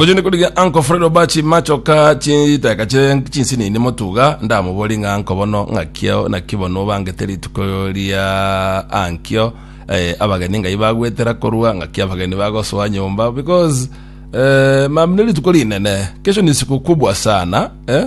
ngochende korigia anko fred obachi machoka chiteka chire chinsinini motuga ndamobori ng'a anko bono ng'akio naki bono obangete rituko ria ankio eh, abageni ngai bagwetera korwa ng'aki abageni bagosoa nyomba because eh, mam ne rituko rinene kesho ni siku kubwa sana eh?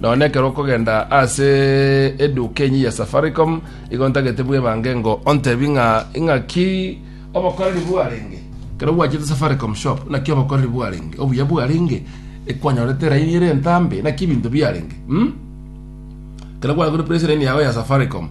Nonya ekero okogenda ase eduka enyia ya Safaricom, igo ntagete bwebange ngo ontebie ng'a ing'aki obokoreri bwarenge. Ekero gwachete Safaricom shop, naki obokoreri bwarenge, obuya bwarenge, ekwanyorete elaini ere entambe, naki ebinto biarenge. mm? Ekero gwagure press line yago ya Safaricom,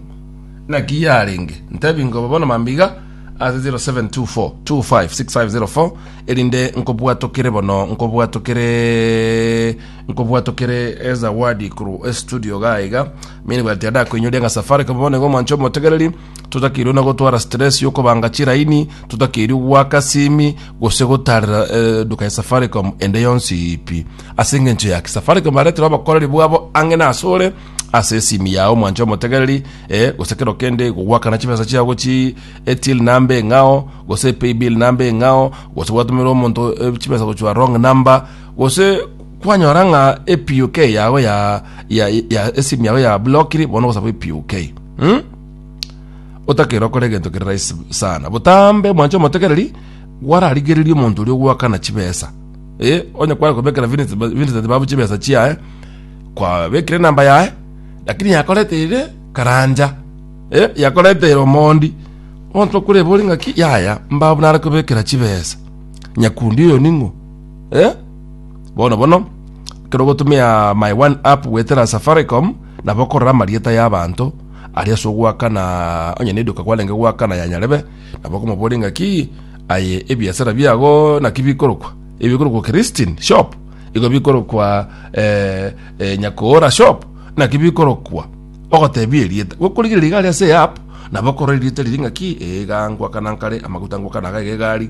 naki yarenge. Ntebie ngo bono mambia iga ase 0724256504 erinde nkobwatokere bono nkobwatokere Nkobwatokere ezawadi korwa estudio iga iga mi nibwati ande akoinyoria ng'a Safaricom bono nigo omwancho omotegereri totakeirwe na gotwara stress yokobanga chiraini totakeirwe gwaka simi gose gotarera eh, duka ya Safaricom ende yonsi ipi ase engencho yaki Safaricom baretera obokoreri bwabo ang'e na asore ase esimi yao omwancho omotegereri eh, gose kero kende gogwakana chibesa chiao gochi etil namba eng'ao gose paybill namba eng'ao gose gwatumerwa omonto eh, chibesa gochwa wrong number Gose kwanyora ng'a ePUK yago ya ya ya esimu yago ya blokiri bono ogosaba ePUK. Hmm? otakera okora egento kere rahisi sana botambe mwanche omotegereri gwararigereria omonto oria ogwakana chibesa eh onye kwara kobekera Vincent Vincent babu chibesa chiaye kwabekire namba yaye lakini yakoreteire karanja eh yakoreteire omondi onto kure bori ng'aki yaya mbabu nare kobekera chibesa nyakundi oyo ning'o Eh? Bono bono, ekero ogotumia my one app gwetera Safaricom, nabo okorora amarieta y'abanto, aria ase ogoakana onye na eduka kwarenge goakana ya nyarebe, nabo okomoboria ng'aki aye ebiasara biago naki bikorokwa, ebi bikorokwa Christine shop, igo bikorokwa eh, eh, Nyakoora shop, naki bikorokwa ogotebia erieta gokorigereria iga aria ase eapp nabo okorora erieta riria ng'aki ee iga ngoakana nkare amaguta ngoakana iga iga egari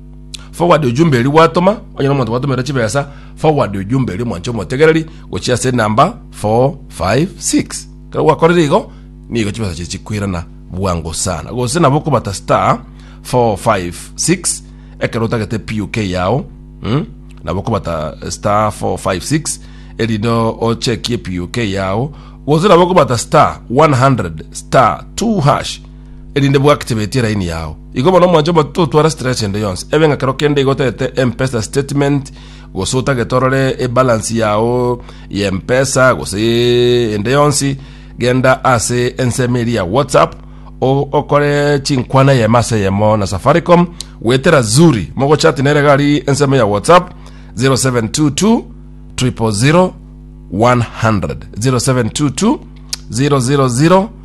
Forward ujumbe eri gwatoma, onye na omonto gwatomera chibesa, forward ujumbe eri mwanche omotegereri gochia ase enamba 456. Kero gwakorire igo, nigo chibesa chiri chikwirana bwango sana. Gose nabo okobata star 456 ekero otagete PUK yao, mm? nabo okobata star 456 erinde ochekie PUK yao, gose nabo okobata star 100 star 2 hash erinde bwactivatie line yao igo bono mwancho but totwara stress ende yonsi ebe ng'a kero kende igo otagete mpesa statement gose otagete orore ebalance yao ya mpesa gose ende yonsi genda ase ensemo eri ya whatsapp o- okore chinkwana yemo ase yemo na safaricom wetera zuri mogochati nere gari ensemo ya whatsapp 0722 000 100 0722 000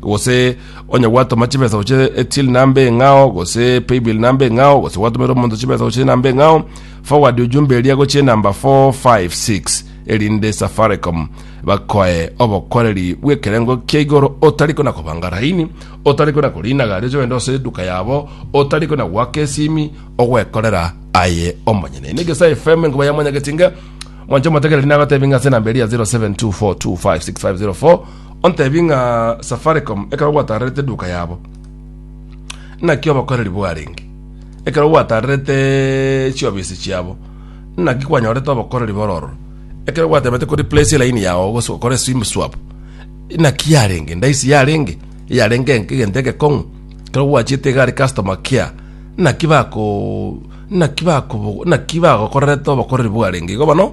gose onye gwatoma chibesa gochia till namba eng'ao gose paybill namba eng'ao gose gwatomera omonto chibesa gochia namba eng'ao forward ujumbe eria gochia namba 456 erinde safaricom bakoe obokoreri bw'ekerengo kia igoro otari kona kobanga raini otari kona korina gari oche ogende ase eduka yabo otari kona gwaka esimi ogwekorera aye omonyene ene gesa fm enkoba ya mwanyagetinga mwancho motegereri nagotebi ng'a ase enamba eria 0724256504 Ontebie ng'a Safaricom ekero gwatarerete eduka yabo, naki obokoreri bwarenge? Ekero gwatarerete chiofisi chiabo, naki kwanyorete obokoreri bore ororo? Ekero gwatemete ko replace elaini yao gose okore sim swap, naki yarenge? Ndaisi yarenge? Yarenge enke- egento egekong'u? Ekero gwachiete iga are customer care, naki bako naki bako naki bagokorerete obokoreri bwarenge? Igo bono,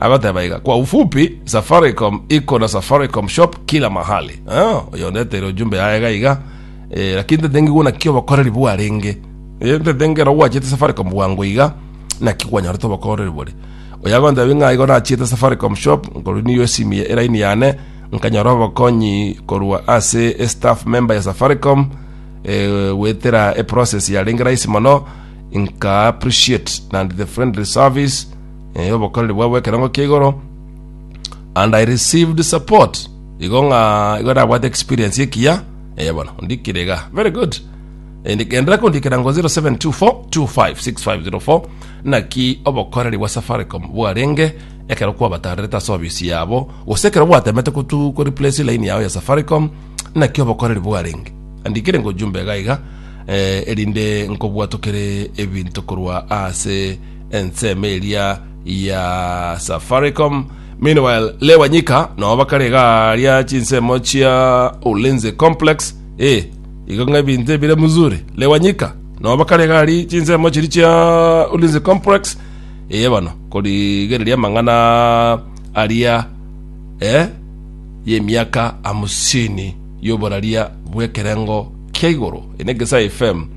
Agoteba iga, Kwa ufupi, Safaricom iko na Safaricom shop kila mahali. Ah, oyo ondeteire ojumbe yaye iga iga. Eh, lakini ntete ngiguna ki obokoreri bwarenge. Eh, ntete ngero gwachete Safaricom bwango iga, naki kwanyorete obokoreri bore. Oyo agonteba ng'a igo nachiete Safaricom shop, nkorunia esimi eraini yane, nkanyora obokonyi korwa ase e staff member ya Safaricom, eh, gwetera eprocess yarenge rahisi mono, nka appreciate naende the friendly service, eh, obokoreri bwabo ekerengo kia igoro and i received support igo ng'a igo nabwate experience ekiya eh, bono ndikirega very good Eh, ndi- endelea kundikira ngo 0724256504 naki obokoreri bwa safaricom bwarenge ekero kwabatarerete ase obisi yabo gose ekero bwatemete kutu kureplace line yao ya safaricom naki obokoreri bwarenge andikire ngo jumbe gaiga eh, erinde nkobwatokere ebinto korwa ase ensemo eria ya Safaricom. Meanwhile, Lee Wanyika nao bakare iga ria chinsemo chia Ulinzi Complex. Eh, igo ng'a ebinto ebire mzuri. Lee Wanyika nao bakare iga ri chinsemo chiri chia Ulinzi Complex. Eye bono korigereria amang'ana aria eh, y'emiaka hamsini y'oboraria bw'ekerengo kia igoro. Eye n'Egesae FM.